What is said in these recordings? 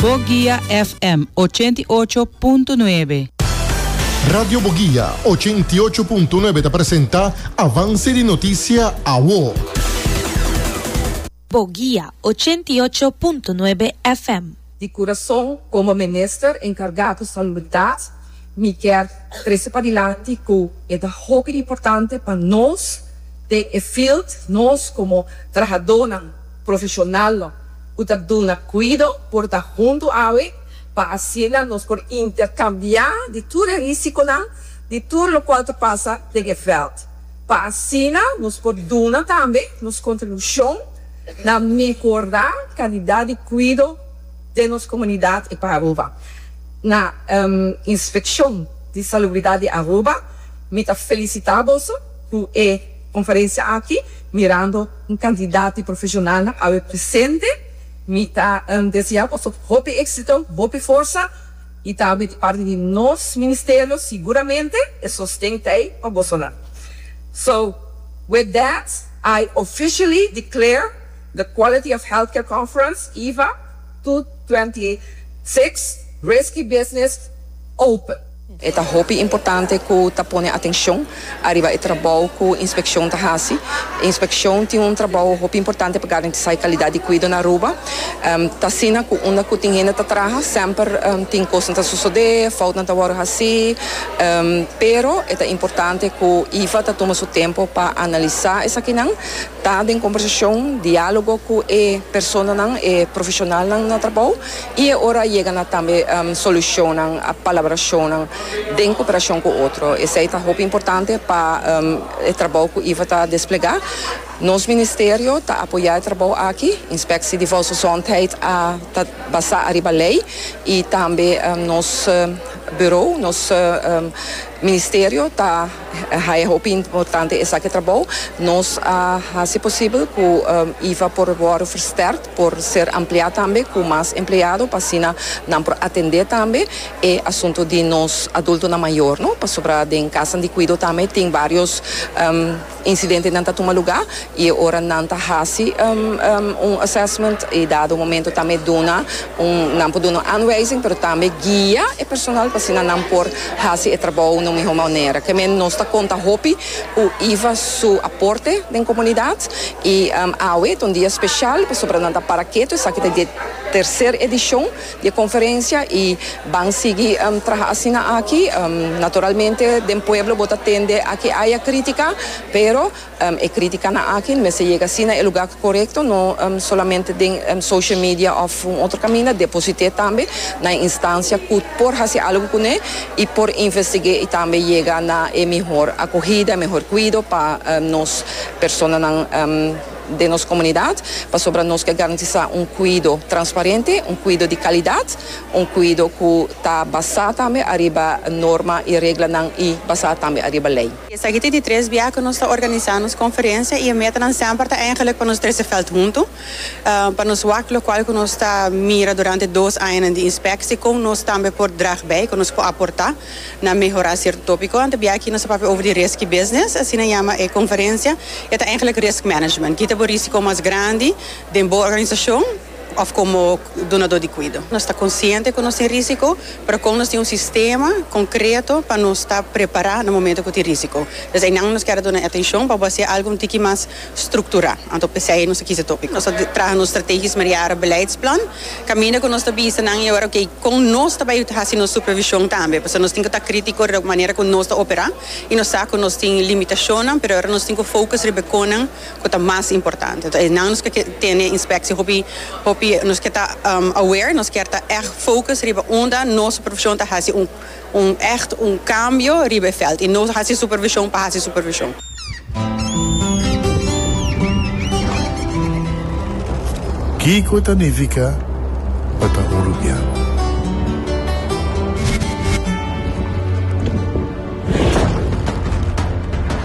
Boguia FM ochenta i ocho punto nuebe. Radio Boguia ochenta i ocho punto nuebe ta presenta Avance di Noticia Awo. Boguia ochenta i ocho punto nuebe FM. di Curaçao como Minister encargado Salubridad mi kier trece padilanti cu e ta hopi importante pa nos den e field nos como trahadonan Profeshonalnan ku ta duna kuido por ta huntu awe pa asina nos por interkambiá di tur e risikonan di tur lokual ta pasa den e vèlt, pa asina nos por duna tambe nos kontribushon na mehorá kalidat di kuido den nos komunidat i pa Aruba. Na Inspekshon di Salubridat di Aruba mi ta felisitá boso ku e. Conferencia aki, mirando un cantidad di profesionalnan awe presente, mi ta desea boso hopi exito, hopi forsa y tambe di parti di nos Ministerio seguramente e sosten ta ey pa bosonan. So, with that, I officially declare the Quality of Healthcare Conference, EHVA, 2026, Risky Business open. E ta hopi importante ku ta pone atenshon ariba e trabou ku inspekshon ta hasi. Inspekshon tin un trabou hopi importante pa garantisá e kalidat di kuido na Aruba. T asina ku unda ku tin hende ta traha semper tin kosnan ta sosodé, foutnan ta wòrdu hasí. Pero e ta importante ku IVA ta tuma su tempu pa analisá esakinan, ta den kombersashon, diálogo ku e personanan, e profeshonalnan na trabou. I e ora a yega na tambe solucionnan, palabracionnan den cooperacion cu otro. Esey ta hopi importante pa e trabou cu Iva ta desplega. Nos Ministerio ta apoya e trabou aki. Inspectie di Volksgezondheid a ta basa ariba ley y tambe nos bureau, nos Ministerio ta haya hopi importante esaki trabou. Nos a haci posibel cu Iva por wordo versterkt. por ser ampliá tambe ku mas empleado pa asina nan por atendé tambe e asunto di nos adultonan mayor no pasobra den kasanan di kuido tambe tin varios incidente nan ta tuma lugá i e ora nan ta hasi un assessment e dado momento tambe duna un nan por duna un aanwijzing pero tambe guia e personal pa asina nan por hasi e trabou na un mihó manera ke men nos ta konta hopi Cu iva su aporte den comunidad. Y awe ta un dia special pasobra nan ta para ketu. Esaki ta di e tercer edicion di e conferencia y ban sigui traha asina aki. Naturalmente den pueblo bo ta tende a ke haya critica, pero e criticanan aki mester yega si na e lugar corecto, no solamente den social media of un otro caminda. Deposite tambe na e instancia cu por haci algo cune. y por investig'é y tambe yega na e mihor acogida, e mihor cuido pa nos personanan den nos comunidad, pasobra nos ke garantisa un cuido transparente, un cuido di calidad, un cuido cu ta basa tambe ariba norma y reglanan y basa tambe ariba ley. Esaki ta di tres bia cu nos ta organisa nos conferencia y e metanan semper ta eigenlijk pa nos trece veld hunto, pa nos wak lokual ku nos ta mira durante dos añanan di inspeksie kon nos tambe por drag bei, kon nos por aportá na mehorá sierto tópiko. Ante bia aki nos a papia over di reski business, asina yama e konferensia, i a ta eigenlik risk management, kita bo risiko mas grandi den bo organisashon òf komo donadó di kuido. Nos ta konsiente ku nos tin risiko, pero kon nos tin un sistema konkreto pa nos ta prepará na momentu ku tin risiko. Des einan nos kere duna e atenshon pa bo hasié algu un tiki mas. strukturá. Anto p'esei nos ta kisa tokik. Nos ta traha nos strategies mereara beleidsplan kaminda ku nos ta bisa nan i ora oké kon nos ta bai hasi nos supervishon tambe. Pasobra nos tin ku ta krítiko riba manera ku nos ta operá i nos sa ku nos tin limitashonnan pero ora nos tin ku fokus riba e konan ku ta mas importante. Enton esnan nos ke ke tene inspeksi hopi hopi nos ke ta aware nos kier ta ègt fokus riba unda nos supervishon ta hasi un Un ècht un kambio riba e vèlt i no hasi supervishon pa hasi supervishon. Kiko ta nifiká pa ta hulubiá?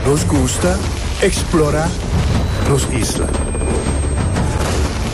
Nos gusta eksplorá nos isla.